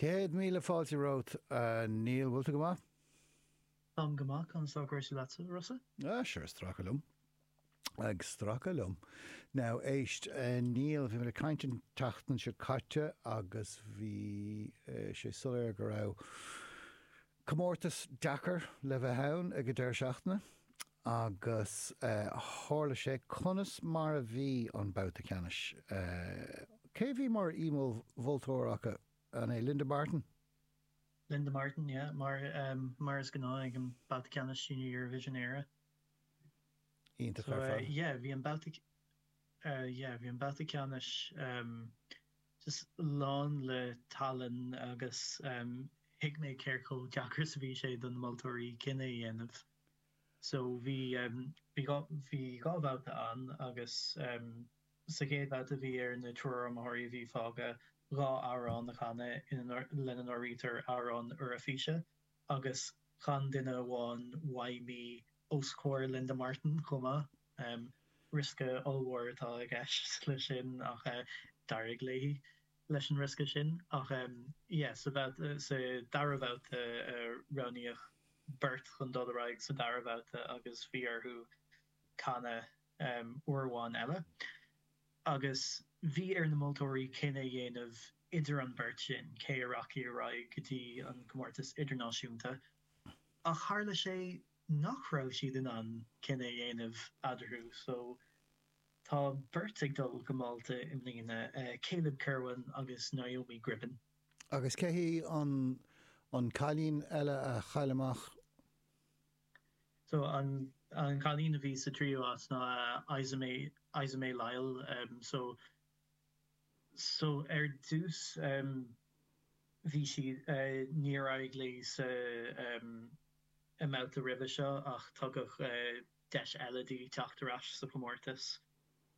Céad míle fáilte romhat, a Neil. An bhfuil tú go maith? Táim go maith. Conas tá cúrsaí leatsa, Rossa? Ah, sure, ag stracadh liom. Ag stracadh liom. Now, éist, a Neil, bhí mé ag caint an tseachtain seo caite agus bhí sé soiléir go raibh, Comórtas deacair le bheith ann ag an deireadh seachtaine agus tharla sé. Conas mar a bhí an babhta ceannais? Cé a bhí mar aoi-mholtóir acu? An é Linda Martin? Linda Martin, yeah. Mar is gnáth ag an babhta ceannais Junior Eurovision Éire. Iontach ar fad. So yeah, bhí an babhta. eh yeah bhí an babhta ceannais em just lán le tallann agus em thuig mé cé chomh deacair is a bhí sé do na moltóirí cinneadh a dhéanamh so bhí em bhí dhá bhí dhá bhabhta ann agus em sa gcéad bhabhta bhí ar an triúr iomaitheoirí a bhí fágtha dhá amhrán a chanadh ina lena n-áirítear amhrán Eoraifíse agus chan duine amháin Why Me os comhair Linda Martin chomh maith. Riosca ollmhór atá i gceist leis sin ach d'éirigh léi leis an riosca sin. Ach yeah, sa bhabhta, sa dara babhta roghnaíodh beirt chun dul ar aghaidh sa dara babhta agus bhí orthu canadh. uair amháin eile agus bhí ar na moltóirí cinneadh a dhéanamh idir an bheirt sin cé a rachadh ar aghaidh go dtí an comórtas idirnáisiúnta ach tharla sé nach raibh siad in ann cinneadh a dhéanamh eadarthu so tá beirt ag dul go Málta i mbliana, Caleb Kirwan agus Naomi Gribbin. Agus cé hí an cailín eile a chaill amach? So an cailín a bhí sa tríú áit ná Esmé Esmé Lyall em so so ar dtús em bhí sí eh níor éirigh léi sa em i mbabhta roimhe seo ach tugadh eh deis eile di teacht ar ais sa chomórtas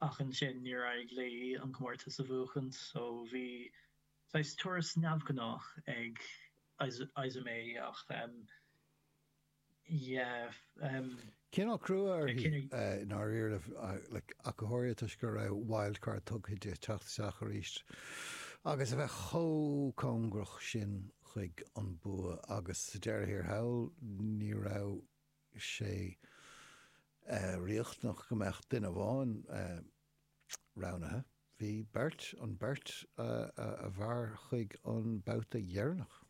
ach ansin níor éirigh léi an comórtas a bhuachaint so bhí saghas turas neamhghnách ag Esmé ach em yeah. Cineál crua uirthi, i ndáiríre, Mícheál Ó Ciaraidh, toisc go raibh wildcard tugtha di teacht isteach arís agus a bheith chomh cóngarach sin chuig an bua agus sa deireadh thiar thall ní raibh sé riachtanach go mbeadh duine amháin roghnaithe, bhí beirt, an bheirt a mhair chuig an babhta deireanach.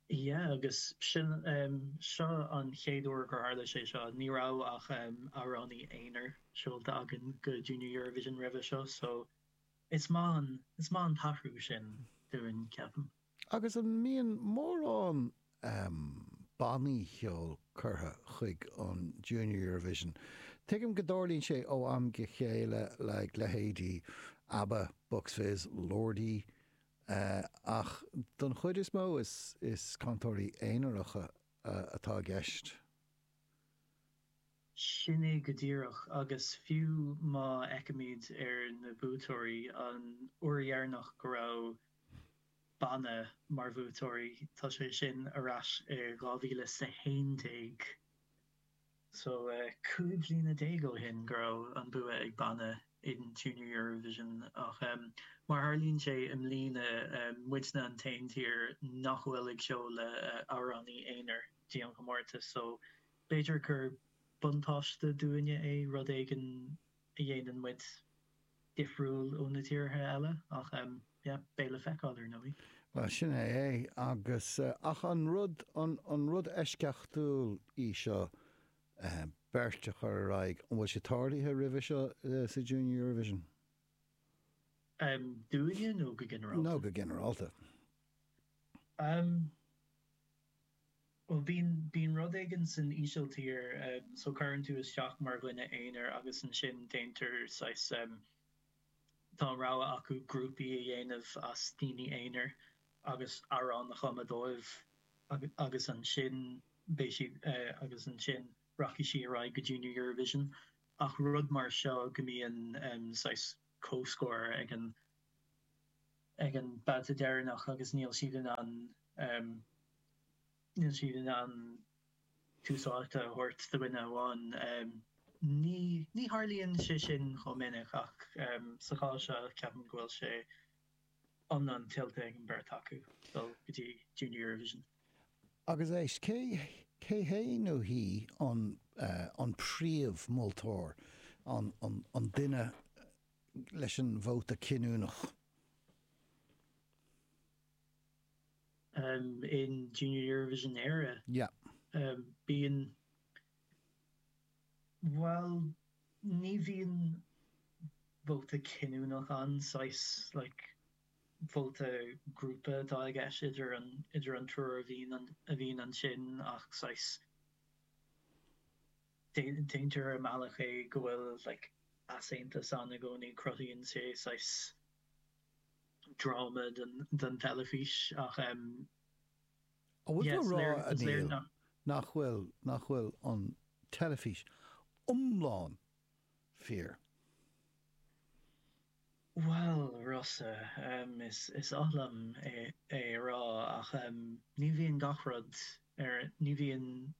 Yeah agus sin em. Seo an chéad uair gur tharla sé seo. Ní raibh ach em. amhránaí aonair seolta againn go Junior Eurovision roimhe seo so is maith an is maith an t-athrú sin dúinn ceapaim. Agus an mbíonn mórán em. bannaí cheoil curtha chuig an Junior Eurovision? Tuigim go dtarlaíonn sé ó am go chéile le leithéidí Abba, Bucks Fizz, Lordi, Ach don chuid is mó is cantóirí aonaracha atá i gceist. Sin é go díreach agus fiú má fhéachaimid ar na buaiteoirí an uair dheireanach go raibh banna mar bhuaiteoirí tá sé sin ar ais i 2011. so cúig bhliana déag ó shin go raibh an bua ag banna in Junior Eurovision ach em mar a tharlaíonn sé i mbliana em muidne an t-aon tír nach bhfuil ag seoladh eh amhránaí aonair go dtí an chomórtas so b'fhéidir gur buntáiste dúinne é rud éigin a dhéanann muid difriúil ó na tíortha eile ach yeah, beidh le feiceáil ar ndóigh. Bhuel, sin é é agus, ach an rud, an rud eisceachtúil í seo beirt a chur ar aghaidh, an bhfuil sé tarlaithe roimhe seo sa Junior Eurovision? Dúinne nó go ginearálta? Nó go ginearálta. Bhuel, bíonn, bíonn rud éigin san Ísiltír, so cuireann tú isteach mar dhuine aonair agus ansin déantar saghas, tá an rogha acu grúpaí a dhéanamh as daoine aonair agus amhrán a chumadh dóibh agus, agus ansin beidh siad, agus ansin rachaidh sí ar aghaidh go Junior Eurovision ach rud mar seo go mbíonn saghas comhscór ag an. ag an babhta deireanach agus níl siad in ann níl siad in ann tús áite a thabhairt do dhuine amháin. Ní ní tharlaíonn sé sin chomh minic ach sa chás seo ceapaim go bhfuil sé iomlán tuillte ag an beirt acu dul go dtí Junior Eurovision. Agus éist, cé cé hé nó hí an an príomh mholtóir, an an duine? leis an vóta cinniúnach. in Junior Eurovision Éire. Yeah. Bíonn. Bhuel, ní bhíonn vóta cinniúnach ann, saghas like vóta grúpa atá i gceist idir an, idir an triúr a bhíonn, a bhíonn ansin ach saghas. Déantar i mbealach é go bhfuil like easaontas ann i gcónaí, cruthaíonn sé saghas dráma don teilifís ach em An bhfuil tú yeah a bhfuil tú a rá liom, a Niall, nach, nach bhfuil, nach bhfuil an teilifís iomlán fíor? Bhuel, Rossa, is oth liom é a rá ach ní bhíonn gach rud ar, ní bhíonn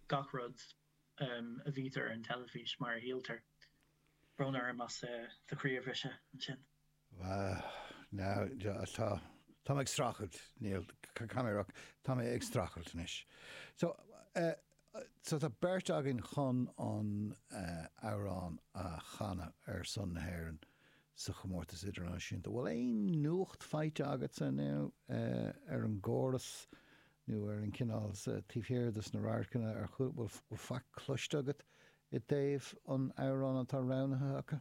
gach rud a bhítear ar an teilifís mar a shíltear. Brón orm as do chroí a bhriseadh ansin. Ní hea, tá mé ag streachailt, Niall, tá mé ag streachailt anois. So tá beirt againn chun an amhrán a chanadh ar son na hÉireann sa chomórtas idirnáisiúnta. Bhfuil aon nuacht faighte agatsa inniu ar an gcóras nó ar an gcineál taobh thiar dos na radharcanna ar chúl? Bhfuil faic cloiste agat i dtaobh an amhrán atá roghnaithe acu?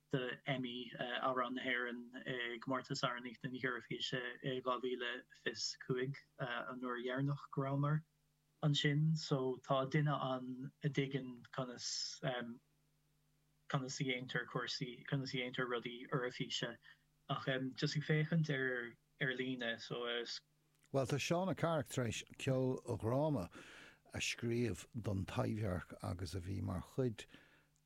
do Emmy, amhrán na hÉireann, i gcomórtas Amhránaíocht na hEoraifíse i 2025, an uair dheireanach go rabhamar ansin. So tá duine ann a dtuigeann conas conas a dhéantar cúrsaí, conas a dhéantar rudaí Eoraifíse ach just ag féachaint ar ar líne so Bhuel, tá Seóna Ní Charraig tar éis ceoldhráma a scríobh don Taibhdhearc agus a bhí mar chuid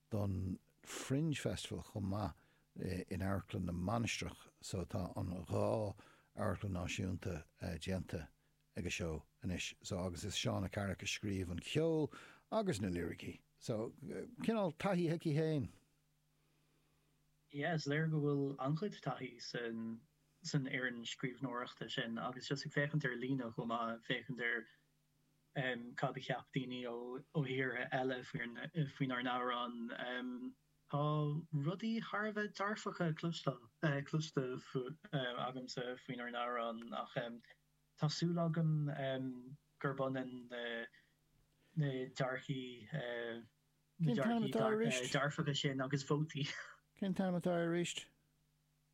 don Fringe Festival chomh maith in Amharclann na Mainistreach. So tá an dhá Amharclann Náisiúnta déanta ag a seó anois. So agus is Seóna Ní Charraig a scríobh an ceol agus na liricí so cineál taithí aici féin. yeah is léir go bhfuil an-chuid taithí san san fhoireann scríbhneoireachta sin agus just ag féachaint ar líne chomh maith ag féachaint ar em cad a cheap daoine ó ó thíortha eile faoin faoinár n-amhrán em tá rudaí thar a bheith dearfach cloisteáil eh cloiste agamsa faoinár n-amhrán ach em tá súil agam em gurb ionann na na dearcthaí eh Cén Cén t-ainm t-ainm atá arís? dearfacha sin agus vótaí. Cén t-ainm atá arís?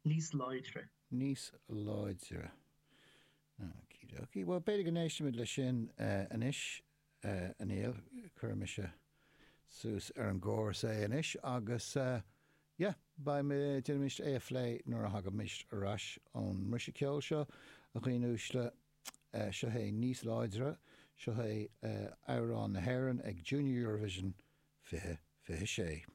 Níos láidre. Níos láidre. Okie dokie. Bhuel, b'fhéidir go n-éistfimid leis sin anois, a Niall. Cuirfidh mise suas ar an gcóras é anois agus, yeah, beidh, déanfaimid é a phlé nuair a thagaimid ar ais ón mbriseadh ceoil seo, a dhaoine uaisle. seo é níos láidre, seo é amhrán na hÉireann ag Junior Eurovision 2026.